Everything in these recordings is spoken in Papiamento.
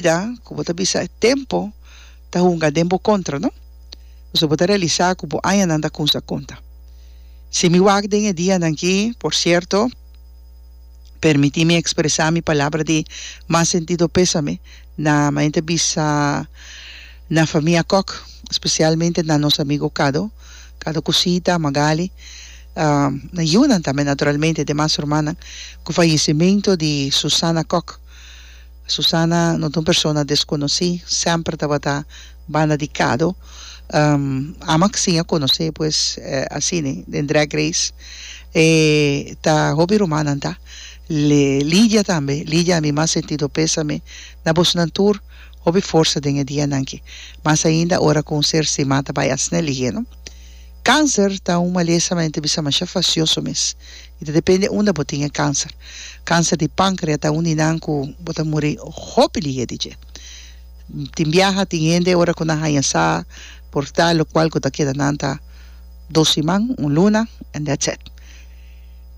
bida, ku bo ta bisa e tempu ta hunga den bo kontra, no? Pasobra bo ta realisá ku bo añanan ta kunsha konta. Si mi wak den e dianan akí, por sierto, permití mi ekspresá mi palabra di mas sentido pésame na manera bisa na famia Kòk, spesialmente na nos amigu Kado, Kado ku Sita, Magali, na yunan tambe naturalmente, e demas rumannan, ku fayesimentu di Susana Kòk. Susana no ta un persona desconocí, semper tabata banda di cado. Ama sin a conoce pues asine den Drag Race e ta hopi rumannan ta, Lidia tambe, Lidia a mi mas sentido pesame na bosonan tur, hopi forsa den e dianan aki, mas ainda ora cu un ser stima ta bay a snel y heno. Cancer ta un malesa mente bisa masha facioso mes. I ta depende unda bo tin e kanser. Kanser di pankrea ta un di nan ku bo ta muri hopi lihe di dje. Tin biaha, tin hende ora ku nan haña sa por ta lokual ku ta keda nan ta dos siman, un luna, and that's it.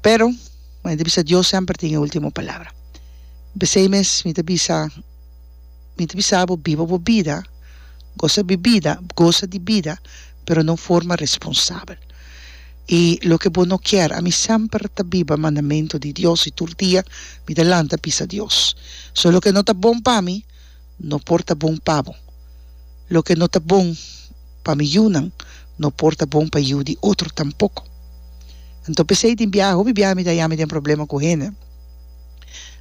Pero, mi bai ta bisa Dios semper tin e ultimo palabra. P'esei mes mi ta bisa, mi ta bisa bo biba bo bida, gosa bibida, gosa di bida. pero na un forma responsabel. I loke bo no kier, ami semper ta biba mandamentu di Dios i tur dia mi ta lanta bisa Dios. So loke no ta bon pa mi, no por ta bon pa bo. Loke no ta bon pa mi yunan, no por ta bon pa yu di otro tampoko. Anto p'esei den biaha, hopi biaha mi ta haya mi den problema ku hende.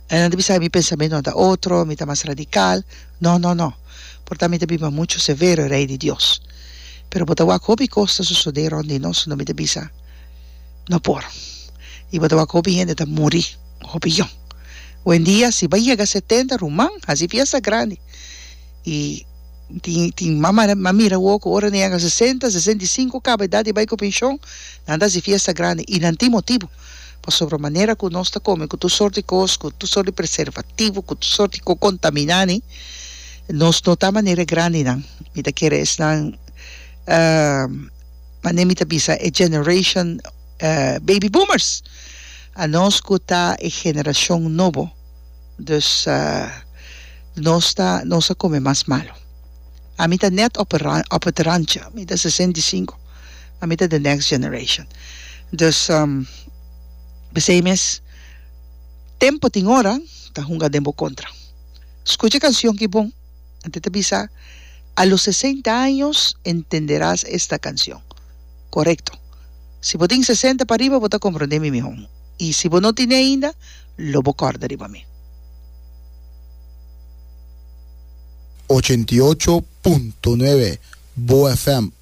Nan ta bisa mi pensamentunan ta otro, mi ta mas radikal. No, no, no. porta mi ta bin pa muchu severo, e Rei di Dios. Pero bo ta wak hopi kos ta sosodé rònt di nos unda mi ta bisa, No por. I bo ta wak hopi hende ta muri, hopi yon. Wendia, si bai yega setenta ruman, hasi fiesta grandi. I tin, tin mamanan, m'a mira awor ku ora nan yega sesenta, sesenta i sinku, kaba edat di bai ku penshon, nan ta hasi fiesta grandi. I nan tin motibu. pasobra manera ku nos ta kome ku tur sort di kos, ku tur sort di preservativo, ku tur sort di ko kontaminá ni, nos no ta manera e grandinan. Mi ta kere esnan mane mi ta bisa e generashon baby boomers, anos ku ta e generashon nobo, dus nos ta nos a kome mas malu. Ami ta nèt op e ran op e rancha, mi ta sesenta i sinku. a mi ta the next generation dus p'esei mes tempo tin ora ta hunga den bo kontra skucha e kanshon ki bon anto ta bisa a los sesenta años entenderás esta canción korekto si bo tin sesenta pariba bo ta komprondé mi mihó i si bo no tine ainda lo bo kòrda riba mi. Ochenta i ocho punto nuebe Boa FM.